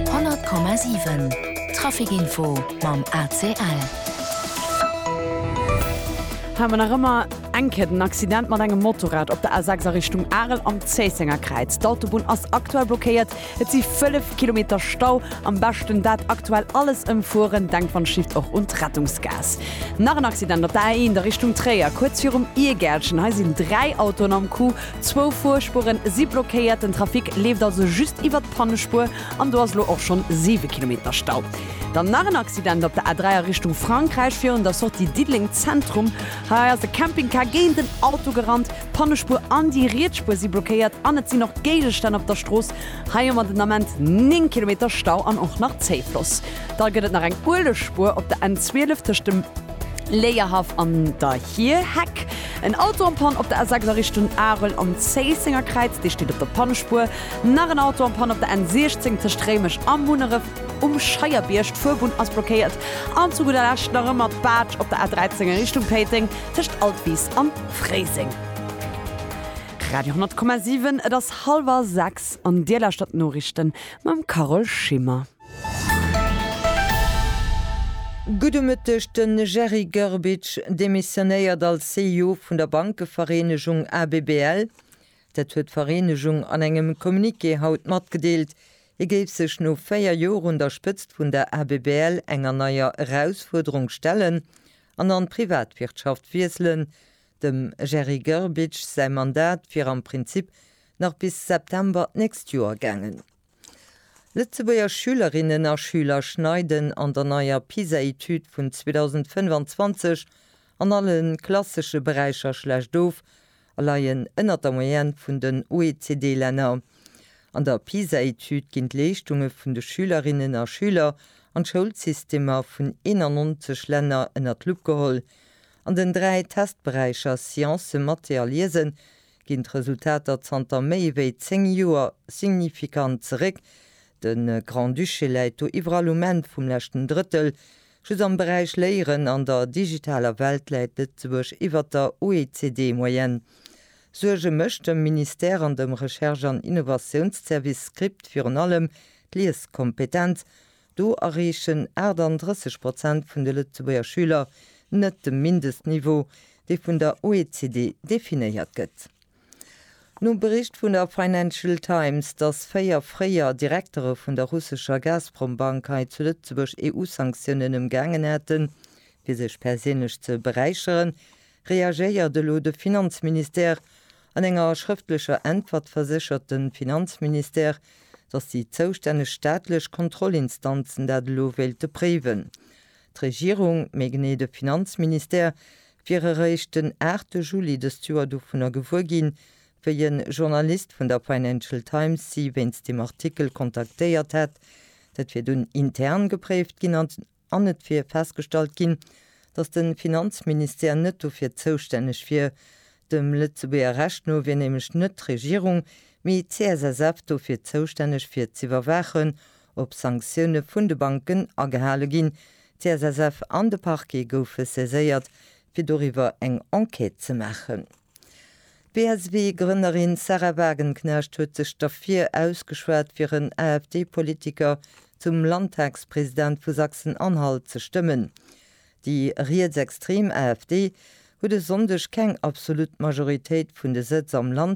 100,7 Traficinfo mam ACL. Hei mer nach ëmmer eng Kéier den Accident mat engem Motorrad op der A6 a Richtung Arel am Zéissenger Kräiz. D'Autobunn ass aktuell blockéiert. Et si 5 Kilometer Stau. Am beschten dat aktuell alles ëmfueren. Denkt wann et schifft och un d'Rettungsgaass. Nach en Accident op der A1 a Richtung Tréier, kuerz virum Iergärtchen. Hei sinn dräi Autoen am Coup. Zwou Fuerspuren si blockéiert, den Trafic leeft also just iwwert d'Pannespuer an do ass elo och schonn 7 Kilometer Stau. Dann nach en Accident op der A3 a Richtung Frankräich, virun der Sortie Diddeleng Zentrum. Hei ass e Campingcar géint en Auto gerannt, d'Pannespuer an déi riets Spuer si blockéiert an et sinn och Géigestänn op der Strooss. Hei hu mer den Ament 9 Kilometer Stau an och nach Zéifloss. Da gëtt et nach eng Uelegsspuer op der N 12 tëscht dem. Léierhaff an der Hierheck. En Auto am Pann op der A6 a Richtung Arel am Zéisséngerkräiz, dee steet op der Pannspuer. Nach en Auto am Pann op der N16 tëscht Réimech a Munneref um Scheierbierg, d'Fuerbunn ass blockéiert. An zu gudder Lescht nach ëmmer d'Baatsch op der A13 a Richtung Péiteng tëscht Altwis an Fréiseng. Radio 10,7 Et ass hallwer 6 an Dir lauschtert d'Noriichten mam Carole Schimmer. Gudde Mëtteg, De Jerry Grbic demissionéiert als CEO vun der Bankevereenegung ABBL. Dat huet d'Vereenegung an engem Communiqué haut matgedeelt. Hie géif sech no 4 Joer un der Spëtzt vun der ABBL enger neier Erausfuerderung stellen an an d'Privatwirtschaft wiesselen. Dem Jerry Grbic säi Mandat wier am Prinzip nach bis September d'nächst Joer gaangen. Lëtzebuerger Schülerinnen a Schüler schneiden an der neier PISA-Etüd vun 2025 an alle klassesche Beräicher schlecht of a leien ënnert der Moyenne vun den OECD-Länner. An der PISA-Etüd ginn d'Leeschtunge vun de Schülerinnen a Schüler an d'Schoulsystemer vun 91 Länner ënnert d'Lupp geholl. An den dräi Testberäicher Science, Mathé a Liesen ginn d'Resultater zanter méi wéi zéng Joer signifikant zeréck. De Grand-Duché läit do iwwerall um Enn vum leschten Drëttel. Just am Beräich Léieren an der digitaler Welt läit Lëtzebuerg iwwer der OECD-Moyenne. Suerge mécht dem Ministère an dem Recherche an Innovatiounszervice, Script, virun allem d'Lieskompetenz. Do erreechen 38 Prozent vun de Lëtzebuerger Schüler net de Mindestniveau, dee vun der OECD definéiert gëtt. Nom Bericht vun der Financial Times, dass véier fréier Direktere vun der russescher Gazprom-Bank hei zu Lëtzebuerg EU-Sanktiounen ëmgaangen hätten, fir sech perséinlech ze beräicheren, reagéiert elo de Finanzministère. An enger schrëftlecher Äntwert verséchert de Finanzministère, datt déi zoustänneg staatlech Kontrollinstanzen dat elo wéilte préiwen. D'Regierung, méi genee de Finanzministère, wier eréischt den 8 Juli dëst Joer dovunner gewuer ginn, wéi e Journalist vun der Financial Times si wéinst deem Artikel kontaktéiert hätt. Dat wier dunn intern gepréift ginn an An et wier festgestallt ginn, datt de Finanzministère net dofir zoustänneg wier. Dem Lëtzebuerger Recht no wier nämlech net d'Regierung, mee d'CSSF dofir zoustänneg fir z'iwwerwaachen, ob Sanktioune vun de Banken agehale ginn. D'CSSF an de Parquet goufe saiséiert, fir doriwwer eng Enquête ze maachen. D'BSW-Grënnerin Sahra Wagenknecht huet sech derfir ausgeschwat fir en AfD-Politiker zum Landtagspresident vu Sachsen-Anhalt ze stëmmen. Déi rietsextrem AfD huet e Sonndeg keng absolut Majoritéit vun de Sëtz am Land,